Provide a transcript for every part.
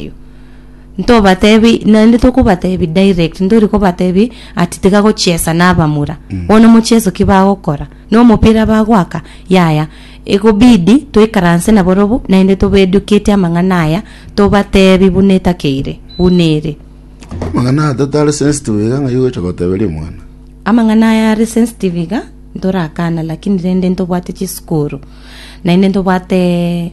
Erio ntobatebi naende tokobatebi direct ntori kobatebi ati tiga gochiesa na abamura bono mochieso ki bagokora no omopira bagoaka yaya ekobidi toikaranse nabo robo naende tobe educate amang'ana aya tobatebi buna etakeire buna ere Amang'ana aya tatare sensitive iga ng'ai gocha goteberia omwana. amang'ana aya are sensitive iga ntorakana lakini rende ntobwate chisukuru naende ntobwate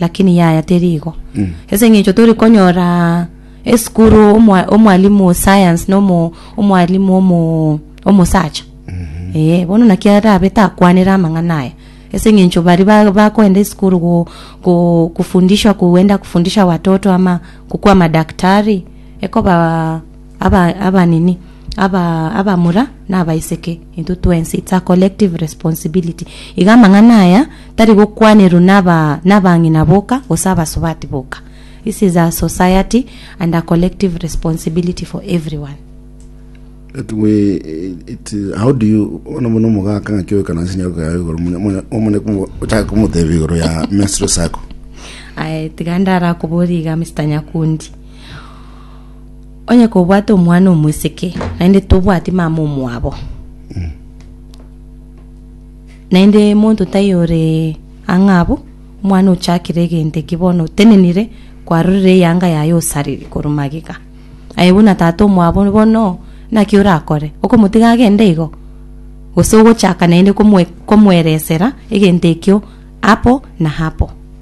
Lakini yaya teri igo. Ase eng'encho tori konyora esukuru omwa- omwalimu o science na omo- omwalimu omo- omosacha. Ee, bono naki arabe takwanera amang'ana aya. Ase eng'encho baria ba- bakoenda esukuru go- go- kofundishwa kuenda kofundisha watoto ama gokwa amadaktari, ekoba. Aba, aba nini? Aba, abamura na abaiseke, intwe twensi. It's a collective responsibility. Iga amang'ana aya tari gokwanerwa naba, nabang'ina boka, gose abasubati boka. This is a society and a collective responsibility for everyone. It we, it, how do you ona muno mugaka ngaki oikana nsi nyako yawe igoro munya munya omone kumu ochaka kumuteba igoro ya menstrual cycle Aye, tiga ndarakoboria iga Mr. Nyakundi. Onye kobwate omwana omweseke, naende tobwati mama omwabo. Naende monto tai ore ang'a abwo, omwana ochakire egento eki bono otenenire, kwarorire eyanga yaye osariri korwa magega. Aye buna tata omwabo bono, naki orakore? Okomotiga agende igo? Gose ogochaka naende komwe- komweresera egento ekio apo na apo.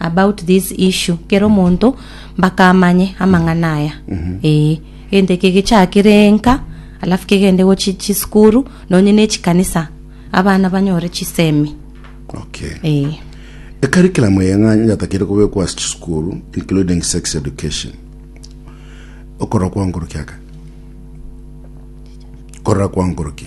about this issue kera omonto mpaka amanye amang'ana aya ee egento eke gechakire enka alafu kegende go chi- chisukuru nonye ne chikanisa abana banyore chisemi okay ee ekarikilamo yeng'anyo yatakeire kobekwa ase chisukuru including sex education okorora kwankoroki aka korora kwankoroki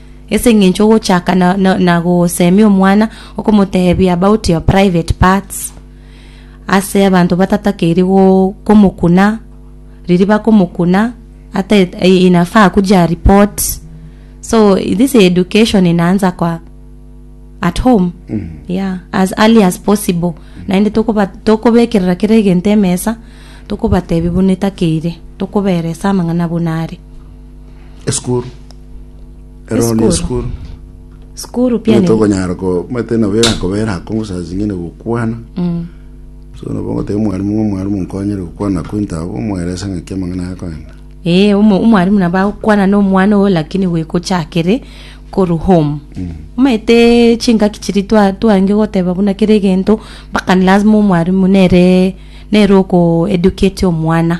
Ase engencho ogochaka na, na, na gosemia omwana okomotebia about your private parts ase abanto batatakeiri go komokuna riri bakomokuna ata et- eh, inafaa kuja report so this education inaanza kwa at home yeah as early as possible naende tokoba tokobekerera kera egento emesa tokobatebia buna etakeire tokoberesa amang'ana buna are Esukuru. Ero ni Esukuru. esukuru. Skuru Nigo piani. tokonyara ko mate nabo erakobera akongo saa zingine gokwana. Mm. So nabo ngoteba omwalimu ng'a omwalimu nkonyere gokwana ko into abwo omwerese ng'aki amang'ana aya akoenda. Eh, omo- omwalimu nabo agokwana na omwana ogo lakini gwekochakere koru home. Omanyete chingaki chiri twa- twange goteba buna kera egento mpaka ni lazima omwalimu nere nere oko educate omwana.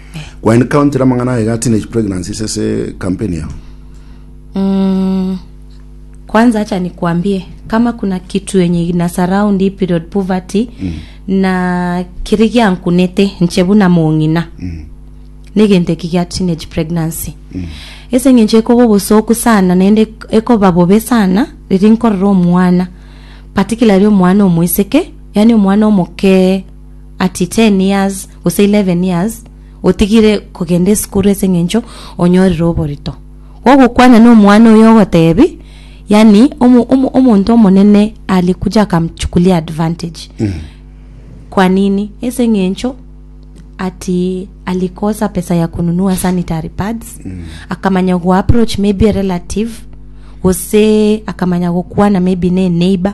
Kwani counter amang'ana aye ga teenage pregnancies ase campaign yao? Mm, kwanza acha nikwambie kama kuna kitu yenye ina surround hii period poverty mm. na kiri giankunete nche buna mong'ina mm. negento eki gia teenage pregnancy mm. ese eng'encho ekoba obosoku sana naende ekoba bobe sana riri nkorora omwana particularly omwana omoiseke yani omwana omokee at 10 years gose 11 years otigire kogenda esukuru ase eng'encho onyorire oborito gogokwana na omwana oyo ogotebi yani omo, omo, omonto omonene alikuja akamchukulia advantage kwa nini ase eng'encho ati alikosa pesa ya kununua sanitary pads akamanya go approach maybe a relative gose akamanya gokwana maybe ne eneighbor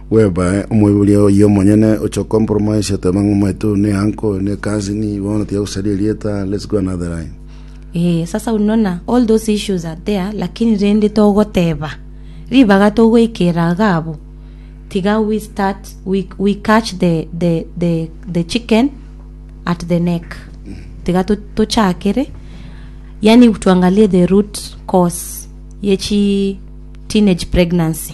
Bw'ebae omoiboria oyio omonyene oche okompromise oteba ng'a omoeto oyo ne uncle, ne cousin, bono tiga gosaria erieta, let's go another line. Ee, sasa unona, all those issues are there, lakini rende togoteba, ribaga togoikera iga abwo, tiga we start, we, we catch the, the, the, the chicken at the neck. Tiga to- tochakere, yani tuangalie the root cause yechi teenage pregnancy.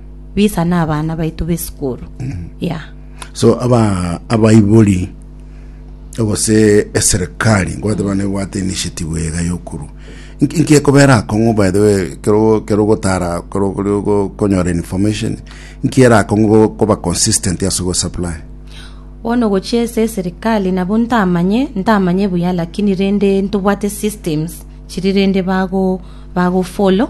bisa na abana baito b'esukuru yeah. so aba abaibori gose eserikari ngobateba nebwate initiative ega yokorwa Inki- inki ekobera akong'u by the way kero kero gotara kero kore go- konyora information inki era akong'u go- koba consistent ase go supply bono gochia ase eserikali nabo ntamanye ntamanye buya lakini rende ntobwate systems chiri rende bago bago follow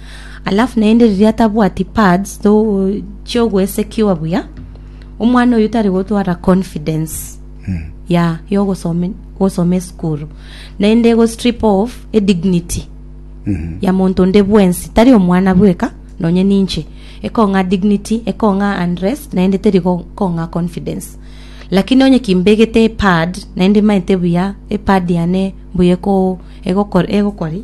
Alafu naende riria atabwati pads to chiogwesekiwa buya, omwana oyio tari gotwara confidence ya yogosoma gosoma esukuru, naende ego strip off edignity ya monto onde bwensi, tari omwana bweka nonye ninche, ekong'a dignity, ekong'a unrest, naende teri go- kong'a confidence. Lakini onye kimbegete epad, naende maete buya epad yane mbuya eko- egokor- egokori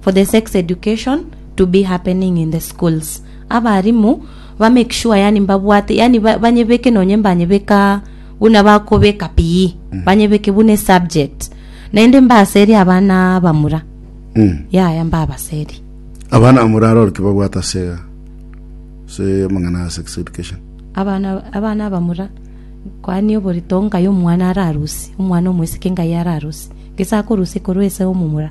for the sex education to be happening in the schools. Abarimu ba make sure yani mbabwate yani ba- banyebeke nonye mbanyebeka buna bakobeka PE banyebeke buna esubject naende mbaserie abana bamura Mm. yaya mbabaserie abana bamura aroro ki babwate ase ase amang'ana ya sex education abana abana bamura kwani oborito ngai omwana ararusi omwana omwesike ngai ararusi gese akorusi korwa ese omomura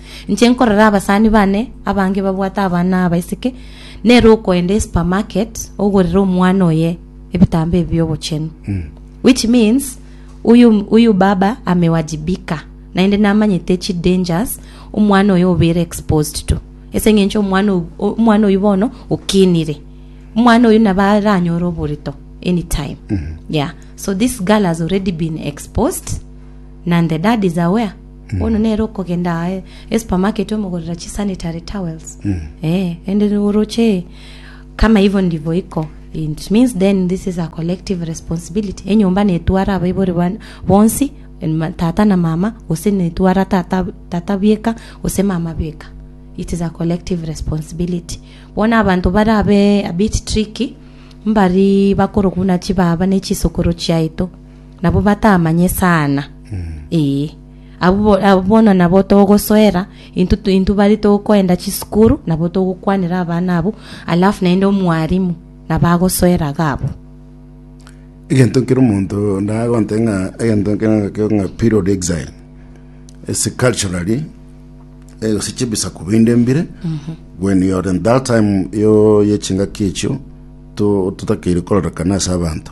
Inche nkorora abasani bane abange babwate abana na abaiseke, nere okoenda esupermarket ogorere omwana oye ebitambo ebi biobochenu. Which means uyu, uyu baba amewajibika naende namanyete chi dangers omwana oyo obere exposed to ese ng'encho omwana oyu, omwana oyu bono okinire omwana oyu nabo aranyore oborito anytime yeah so this girl has already been exposed na the dad is aware Bono nere okogenda aa esupermarket omogorera chisanitary towels eh and then oroche kama hivyo ndivyo iko it means then this is a collective responsibility enyomba netwara abaibori bane bonsi and ma- tata na mama gose netwara tata tata bweka gose mama bweka it is a collective responsibility bono abanto barabe a bit tricky mbari bakorokuna chibaba ne chisokoro chiaito nabo batamanye sana ee abwo bo- abwo bono nabo togosoera intwe tu- intwe bare tokoenda chisukuru nabo togokwanera abana abo alafu naende omwarimu nabo agosoera iga abwo egento nkere omonto ndagonte ng'a egento nkere ng'ake ng'a period exile ase culturally eh, gose chibisaku binde mbire when you are in that time yo yechingaki echio to- totakeire kororekana ase abanto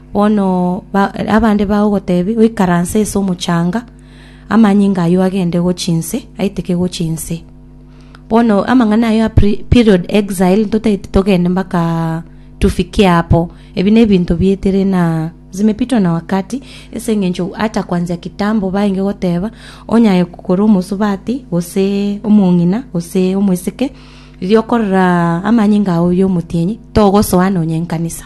Bono abande bagogotebi, Oikaranse ase omochanga, amanyinga ayio agende gochia inse, aiteke gochia inse. Bono amang'ana ayio a period exile totagete togende mpaka tufikie hapo. Ebi nebinto bietere na zimepitwa na wakati, ase eng'encho ata kwanzia kitambo baenge goteba onyaye korwa omosubati gose omong'ina gose omosike riria okorora amanyinga ao yomotienyi togosoa nonya enkanisa.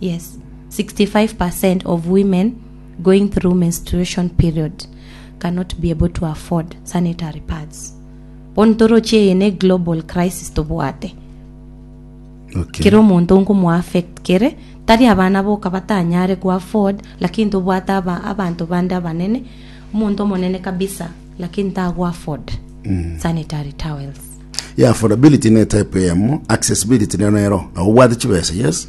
Yes, 65 percent of women going through menstruation period cannot be able to afford sanitary pads. Bono toroche eye ne global crisis tobwate. Okay. Kera omonto nkomo affect kere tari abana boka batanyare ku afford lakini tobwate aba abanto bande abanene omonto omonene kabisa lakini tago afford mm. sanitary towels. Yeah, affordability ne type yamo, accessibility ne nero. Obwate chibesa, yes.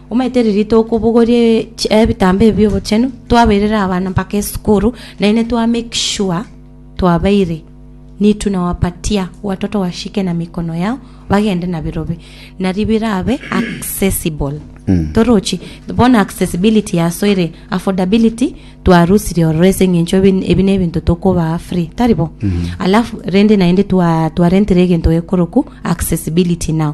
Omanyete riria tokobogoria chi- ebitambo ebi bi'obochenu, twabairire abana mpaka esukuru, naende twa make sure twabaire ni tunawapatia watoto washike na mikono yao bagende na birobe, nario birabe accessible. Torochi, bono accessibility yasoire, affordability twarusirie ororo ase eng'encho ebi- ebi nebinto tokobaa free, tari bo? Alafu rende naende twa- twarentire egento gekoroku accessibility now.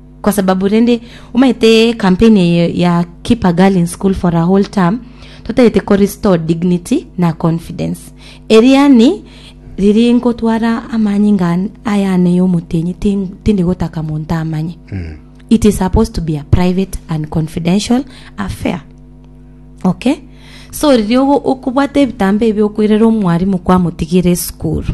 Kwa sababu rende omanyete campaign eye ya keep a girl in school for a whole term, totagete ko restore dignity na confidence. Eriani riri nkotwara amanyi nga ayane yomotenyi tindi gotaka monto amanye. Mm. It is supposed to be a private and confidential affair. Okay? So riri okobwata ebitambo ebi okwerera omwarimu kwamotigire esukuru.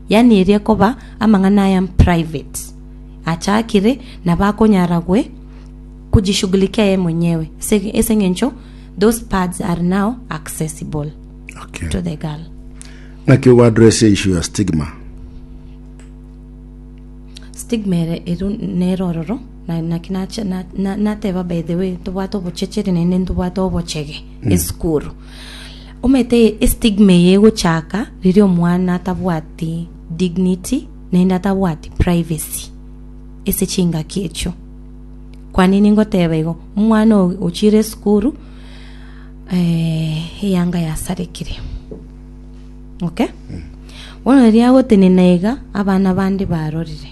Yaani eria ekoba amang'ana aya private achakire nabo akonyara gwe kujishughulikia yeye mwenyewe ase ase eng'encho those pads are now accessible Okay. to the girl. Naki ogo address issue ya stigma. stigma ere eru nero ororo na- naki nache- na- na- nateba by the way tobwate obochecheri naende ntobwate obochege esukuru Omanyete estigma eye egochaka riria omwana atabwati dignity naende atabwati privacy ase chingaki echio. Kwane ningoteba igo, omwana oyo ochire esukuru eyanga yasarekire, okay? Bono riria agotenena iga abana bande barorire.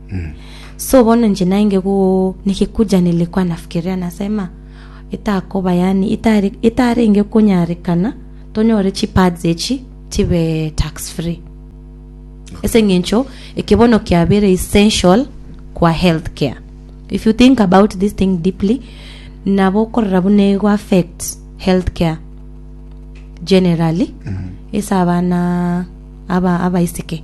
So bono inche nainge go negekunjanire kwanafikerera nasema, etakoba yaani etare etarenge konyarekana tonyore chi pads echi chibe tax free. Ase eng'encho eke bono kiabere essential kwa health care. If you think about this thing deeply, nabo okorora buna ego affect health care generally ase abana aba abaiseke.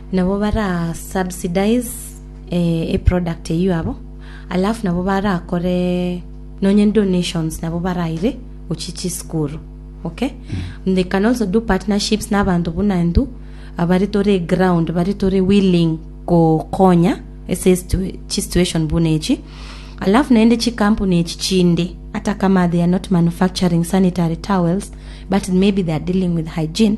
Nabo bara subsidize e product eyio abo, alafu nabo barakore nonye donations nabo baraire gochia chisukuru. Okay? And they can also do partnerships n'abanto buna inthu abare tore ground bare tore willing gokonya ase situ- chisituation buna echi alafu naende chikampuni echi chinde ata kama they are not manufacturing sanitary towels but maybe they are dealing with hygiene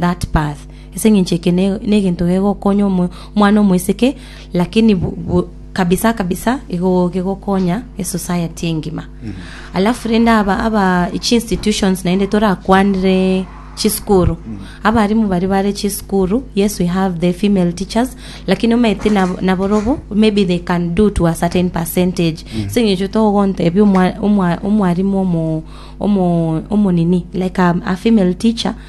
that path, ase engencho eke ne- negento gegokonya omo- omwana omoiseke, lakini bu- bu- kabisa kabisa igo gegokonya esociety engima. Alafu rende aba aba chiinstitutions naende torakwanere chisukuru, abarimu baria bare chisukuru, yes we have the female teachers, lakini omanyete nabo naborobo maybe they can do to a certain percentage, ase engencho togontebia omwa- omwa- omwarimu omo- omo- omonini like a- a female teacher.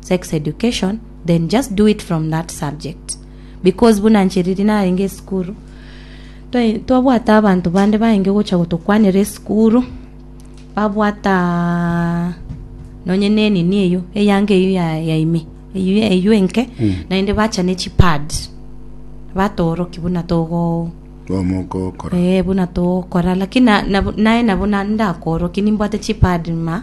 sex education then just do it from that subject because buna nche riri narenge esukuru twa- twabwata abanto bande bainge gocha gotokwanera esukuru babwata nonye ne enini eyio eyanga eyio ya- yaime eyio eyio enke naende bacha ne chipad batoorokia buna togo Bomo okokora. Eh, buna togokora lakini na- nabu- naye nabo na- ndakoorokia nimbwate chipad ma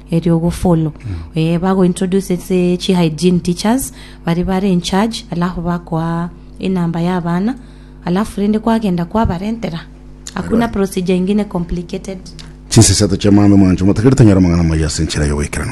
erio ogofollow eh, bagointroduce ase chi hygiene teachers baria bare in charge alafu bakoa enamba ya abana alafu rende kwagenda kwabarentera hakuna procedure ingine complicated Chinsa isato chi'amang'ana omwancho motakereti onyare amang'ana amaya ase enchera y'ogoikeranu.